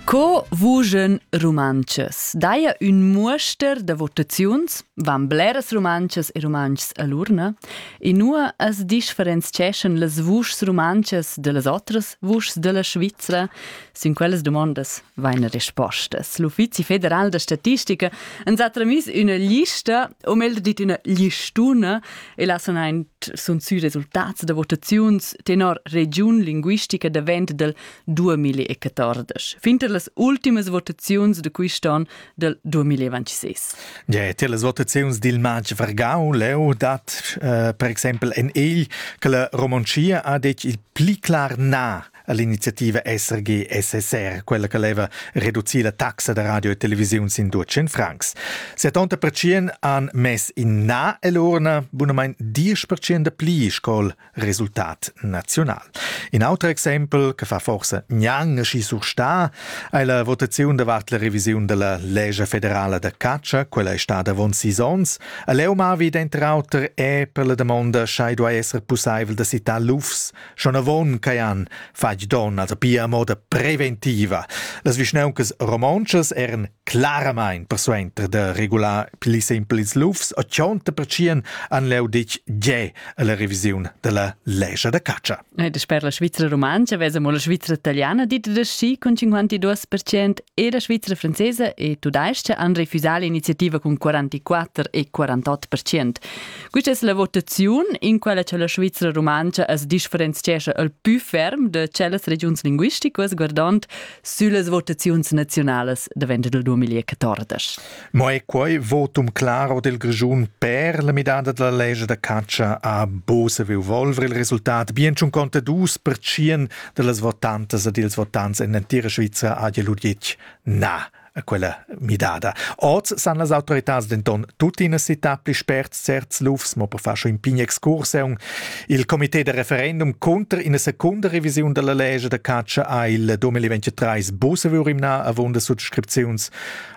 Co vugen rumantschas? Daia ün muoster da votaziuns, van bleras rumantschas e rumantschs a l'urna, e nua as differenzieschan las vuschs rumantschas da las otras vuschs da la Svizra? Sin quellas dumondas vaina rispostas. L'Uffizi federal da statistica ans ha tramiss üna lista, o meglio dit üna listuna, e là sun aint sun sü resultats da votaziuns tenor regiun linguistica davent del 2014, fin ter las ultimas votaziuns de quist'on del 2026. Ja, tie las votaziuns dil matg Vargau leu dat eh, per exempel en egl che la Romoncia ha detg il pli clar na all'iniziativa SRG-SSR, quella che leva reducir la taxa da radio e televisiun sin 200 francs. 70% han mess in na all'urna, bunamain 10% da pli sco resultat nazional. In auter exempel, che fa forse gnang schi sursta, è la votazione davart la revisione della legge federale da caccia, quella è stata avon sis onns. A Leumavi, dentro auter, è per la domanda, schei duai esser possibel da citar lufs Schonavon cajan fatg don als pia a moda preventiva. Las vischnauncas romontschas eran claramain persuenter da regular pli sempel ils lufs o chonta percien an leu ditg ge alla revisiun della lescha da catscha. E sper la Svizra romancha vesa mo la Svizra italiana dit da schi con 52% e la Svizra francesa e tudesca han refusà l'iniziativa con 44 e 48%. Questa es la votaziun in quella cha la Svizra rumantscha as differenziescha al pü ferm da tschellas regiuns linguisticas guardond süllas votaziuns naziunalas davent del 2014. Mo è quai votum claro del Grischun per la midada della legge da caccia a Bose vi volver il resultat bien schon conta dus per cien de las votantas ed ils votants en entira Svizra a Jeludjic na quella midada. Oz san las autoritads denton tuttina citar pli spert certs lufs, mo per far schon in pign excursiun. Il comité de referendum conter ina secunda revisiun della legge de caccia ha il 2023 Bussevürimna avunda subscripziuns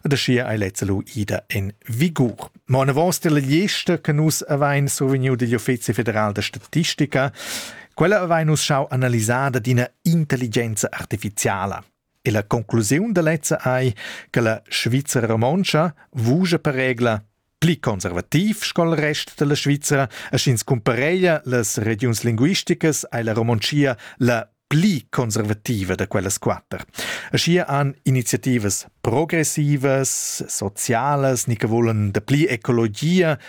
da scia ai lezzelo ida en vigur. Ma una vostra lista che nus avain survegniu degli Uffizi federal de statistica, quella avain nus schau analisada d'ina intelligenza artificiala. E la conclusiun da lezza ei che la Svizra romontscha vugia per regla pli conservativ sco il rest dalla Svizra e sch'ins cumpareglia las regiuns linguisticas ei la Romontschia la pli conservativa da quellas quater. Aschia han iniziativas progressivas, socialas, ni che volan da pli ecologia,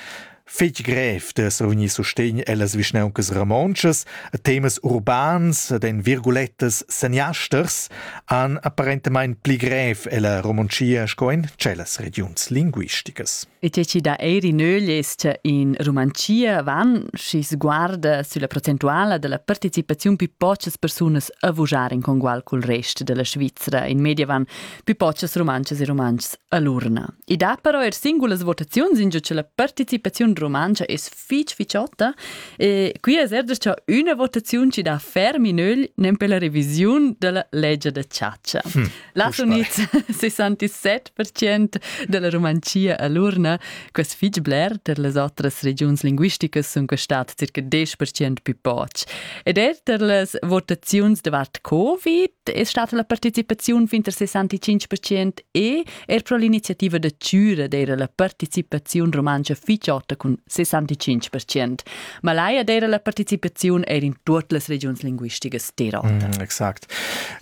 Fitg grev d'esser vegnì sustegn ellas vischnauncas romontschas a temas urbans ed en virgulettas seniasters han apparentamain pli grev ella Romontschia sco en tschellas regiuns linguisticas. E tge chi dà eir in ögl es cha in Rumantschia van, schi sguarda sülla procentuala da la partecipaziun più pochas persunas a vujar in congual cul rest da la Svizra. In media van pipotschas rumantschas e rumantschs a l'urna. I dat però er singulas votaziuns ingio che la participaziun rumantscha es fich ficiotta e qui es er da cha üna votaziun chi dà ferm in ögl nempe la revisiun da la legia da chatscha. Hm, Las unids 67% da la Rumanzia a l'urna, quas fich bler ter las otras regiuns linguisticas sun costat circa 10% più poch. Ed er ter las votaziuns davart Covid è stata la participaziun fin al 65% e er pro l'iniziativa da Tschüra d'eira la participaziun rumantscha fitschota cun 65%. Ma laia d'eira la participaziun eir in tuot las regiuns linguisticas d'Irlanda. Mm, exact.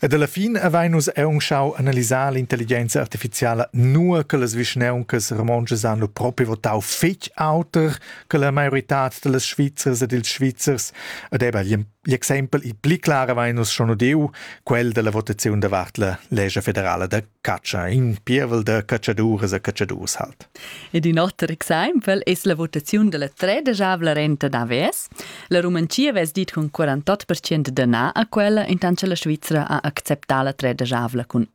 Ed alla fin avain nus eun schau analisar l'intelligenza artificiala nur che las vischneuncas romontschas han lo propi votau fetg auter che la maiorità da las Svizzers ed ils Svizzers ed ebba gli L'exempel il pli clar avain nus schon udiu, quel della votaziun davart la legge federale da caccia, in pievel da cacciaduras e cacciadurs halt. Ed in otter exempel es la votaziun della tredesavla renta d'AVS. La Rumanzia vess dit con 48% de na a quella, intant che la Svizzera ha acceptà la tredesavla cun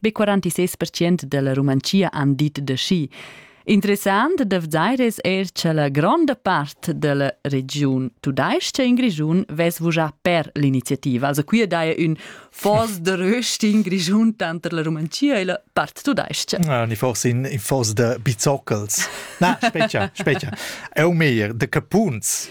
Be 46 percent della Rumantschia han dit de schi. Interessant da vedeir es eir che la gronda part della regiun tudaisch-cha in Grischun ves vujà per l'iniziativa. Also qui daja ün fos de röst in Grischun tanter la Rumantschia e la part tudaisch-cha. Ah, ni forse in, in fos de bizoccels. Na, specia, specia. Eu meir, de capuns.